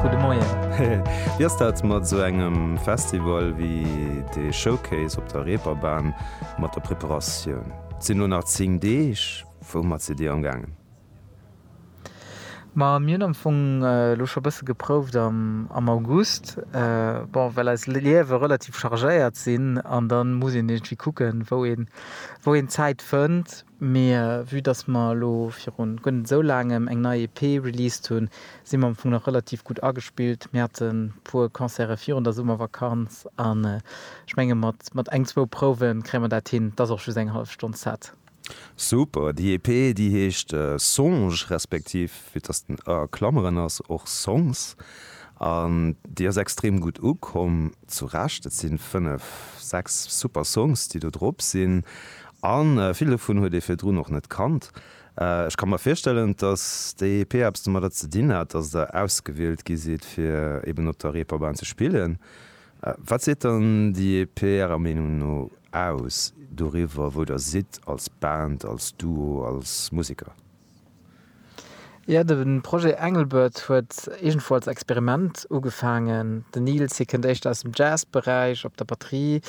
Gudde Moien. Wéi ass dat mat esou engem Festival wéi de Showcase op der Reeperbahn mat der Preparatioun? Et sinn elo nach 10 Deeg. Woumat sidd Dir amgaangen? Ma mir hunn am Fong elo scho e bësse geprouft am August. Bon, well eis Liewe relativ chargéiert sinn an da muss een iergendwéi kucken, wou een, wou een Zäit fënnt. Mee vue dass mer elo viru guer net esou laangem eng nei EP released hunn, si mer am Fong nach relativ gutt agespillt. Mir hate puer Concerte virun der Summervakanz an ech menge mat eng, zwou Prouwe kréie mer dat hin. Et ass och just eng hallef Stonn Set. Super! Déi EP déi heescht Songe respektiv, vue dass den ë a Klameren ass, och Songs an déi ass extrem gutt ukomm. Zu Recht, et si fënnef, sechs super Songs déi do drop sinn A vill dovun huet ee virdrun och net kannt. Ech ka mer virstellen, datt d'EEP eppes domadder ze dinn hat, datt Der ausgewielt gi sidd, fir eben op der Reeperbahn ze spillen. Wat seet dann d'EEP Ärer Meenung no aus doriwwer, wou Der sidd als Band, als Duo, als Museker? Jo, de Projet Engelbert huet iergendwou als Experiment ugefaangen. Den Nils, hie kënnt éischter aus dem Jazzberäich, op der Batterie,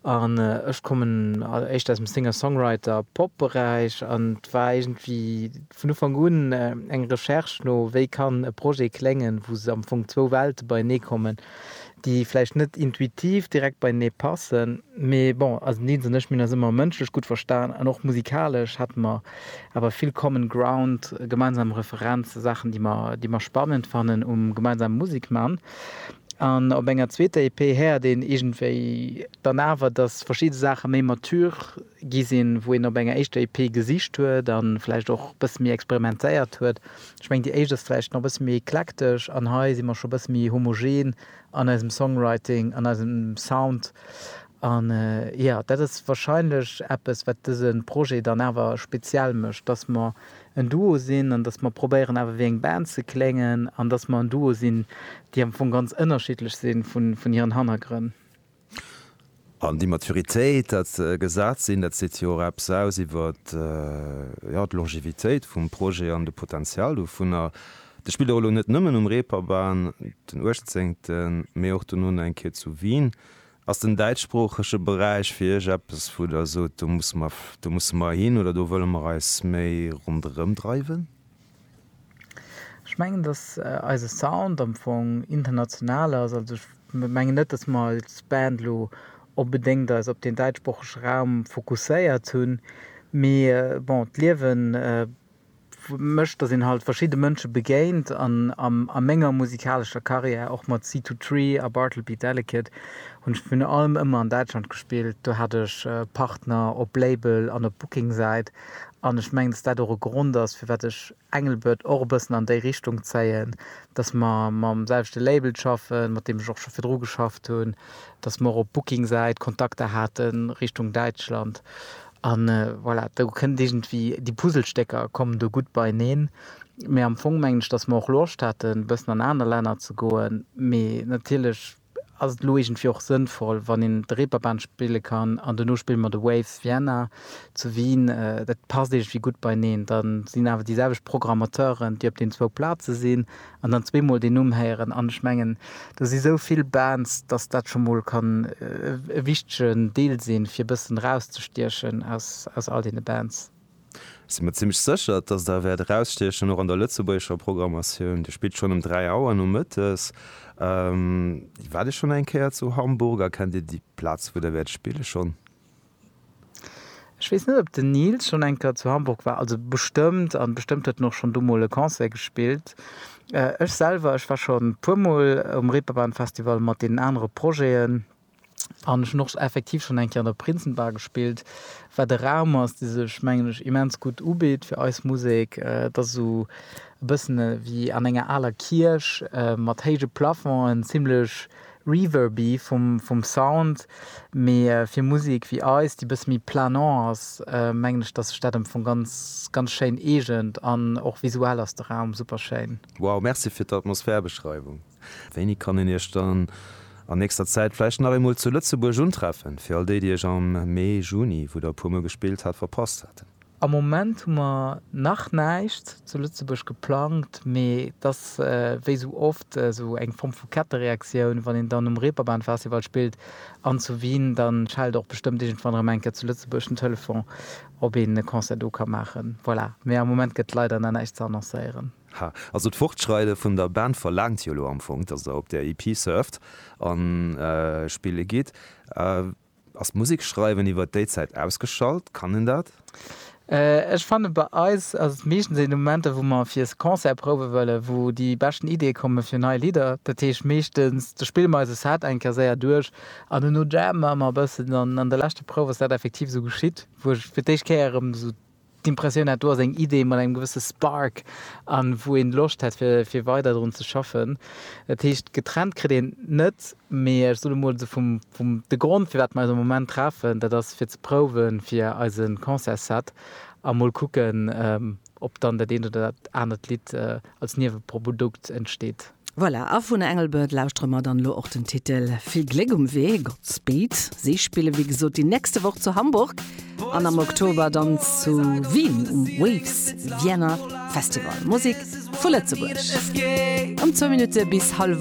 an ech kommen éischter aus dem Singer-Songwriter, Pop-Beräich. An et war iergendwéi vun Ufank un eng Recherche no, wéi kann e Projet kléngen, wou am Fong zwou Welte beienee kommen. déi vläicht net intuitiv direkt beienee passen, mee bon, also den Deens an ech, mir hunn eis ëmmer mënschlech gutt verstan an och musikalesch hate mer awer vill common ground, gemeinsam Referenzen, Saachen, déi mer, déi mer spannend fannen um gemeinsame Musek man. An op enger zweeter EP héiert een iergendwéi dann awer, dass verschidde Saache méi mature gi sinn, wou een op enger éischter EP gesicht huet a vläicht och e bësse méi experimentéiert huet. Ech mengen déi éischt ass vläicht nach e bësse méi eklektesch an hei si mer scho e bësse méi homogen an eisem Songwriting, an eisem Sound. An jo, dat ass wahrscheinlech eppes wat dëse Projet dann awer speziell mécht, dass mer en Duo sinn an dass mer probéieren awer wéi eng Band ze kléngen an dass mer en Duo sinn, déi am Fong ganz ënnerschiddlech si vun hiren Hannergrënn. An d'Immaturität, dat gesat sinn, dat seet jo och eppes aus iwwer, jo, d'Longevitéit vum Projet an de Potenzial dovunner. Dat spillt och elo net nëmmen um Reeperbahn, den Uechtzéngten, mee och dono nach eng Kéier zu Wien. Ass den däitschsproochege Beräich fir Iech eppes, wou Der sot, do musse mer, do musse mer hin oder do wëlle mer eis méi ronderëmdreiwen? Ech mengen dass eise Sound am Fong international ass, also ech mengen net dass mer als Band elo onbedéngt eis op den däitschsproochege Raum fokusséiert hunn, mee bon d'Liewen mécht dass een halt verschidde Mënsche begéint an a menger musikalescher Karriär, och mat Seed To Tree a Bartleby Delicate, hunn ech virun allem ëmmer an Däitschland gespillt, do hat ech Partner op Label an op Booking Säit An ech mengen, dass dat och e Grond ass, firwat ech Engelbert och e bëssen an déi Richtung zéien, dass mer mam selwechte Label schaffen, mat deem ech och scho virdru geschafft hunn, dass mer och op Booking-Säit Kontakter hate Richtung Däitschland. A voilà, do kënnt iergendwéi, déi Puzzlestécker kommen do gutt beieneen. Mee am Fong mengen ech, dass mer och Loscht haten, e bëssen an aner Länner ze goen. Mee natierlech ass et elo iergendwéi och sënnvoll, wann een de Reeperbahn spille kann an duerno spille mer de Waves Vienna zu Wien. Dat passt iergendwéi gutt beieneen. Da sinn awer déi selwecht Programmateuren, déi op deenen zwou Plaze sinn an dann zweemol deen Numm héieren. An ech mengen, do si sou vill Bands, datt dat scho mol kann e wichtegen Deel sinn, fir e bëssen erauszestiechen aus all deene Bands. Sinn mer zimmlech sécher, dass Der wäert erausstiechen, och an der lëtzebuergescher Programmatioun. Dir spillt schonn ëm dräi Auer nomëttes. Waart Dir schonn eng Kéier zu Hamburg a kennt Dir déi Plaz, wou Der wäert spille schonn? Ech weess net, ob den Nils schonn eng Kéier zu Hamburg war. Also bestëmmt, a bestëmmt huet en och schonn do mol e Concert gespillt. Ech selwer, ech war schonn e puer mol um Reeperbahn-Festival mat deenen anere Projeten. An ech hunn och effektiv schonn eng Kéier an der Prinzenbar gespillt, wat e Raum ass, dee sech, mengen ech, immens gutt ubitt fir eis Musek. Et ass esou e bëssen ewéi an enger aler Kierch, mat héije Plafongen, zimmlech reverby vum Sound, mee fir Musek ewéi eis, déi e bësse méi planant ass, mengen ech, dass sech dat am Fong ganz, ganz schéin eegent. An och visuell ass de Raum super schéin. Wow, merci fir d'Atmosphärbeschreiwung! Wéini kann een Iech dann an nächster Zäit vläicht nach eemol zu Lëtzebuerg untreffen, fir all déi, déi Iech am Mee, Juni, wou Der e puer Mol gespillt hat, verpasst haten? Am Moment hu mer nach näischt zu Lëtzebuerg geplangt, mee et ass wéi sou oft esou eng Form vu Kettereaktioun, wann een dann um Reeperbahnfestival spillt an zu Wien, da schellt och bestëmmt iergendwann erëm eng Kéier zu Lëtzebuerg den Telefon, ob een e Concert do ka maachen. Voilà, mee am Moment gëtt leider nach näischt ze annoncéieren. Ha, also d'Fortschreide vun der Band verlaangt jo elo am Fong, dass der op där EP surft a spille gitt. Ass d'Musek schreiwen iwwer déi Zäit ausgeschalt? Kann een dat? Ech fanne bei eis ass et meeschtens een Momenter, wou mer fir Concert prouwe wëllen, wou déi beschten Ideeë komme fir nei Lidder. Dat heescht, meeschtens do spille mer eise Set eng Kéier séier duerch an duerno jammen mer e bëssen an an der leschter Prouf ass dat effektiv esou geschitt, wou ech fir d'éischt Kéier erëm esou d'Impressioun hat do ass eng Idee mat engem gewësse Spark an wou een Loscht hätt fir weider drun ze schaffen. Dat heescht getrennt kritt een et net, mee ech soen emol esou vum de Grond firwat mer eis am Moment treffen, dat ass fir ze prouwen fir eise Concertsset a mol kucken ob dann dat eent oder dat anert Lidd als Nieweprodukt entsteet. Voilà, a vun Engelbert lauschtere mer dann elo och den Titel. Vill Gléck um Wee, Godspeed. Si spille wéi gesot déi nächste Woch zu Hamburg an am Oktober dann zu Wien um Waves Vienna Festival. Musek vu Lëtzebuerg. An zwou Minutte bis hallef.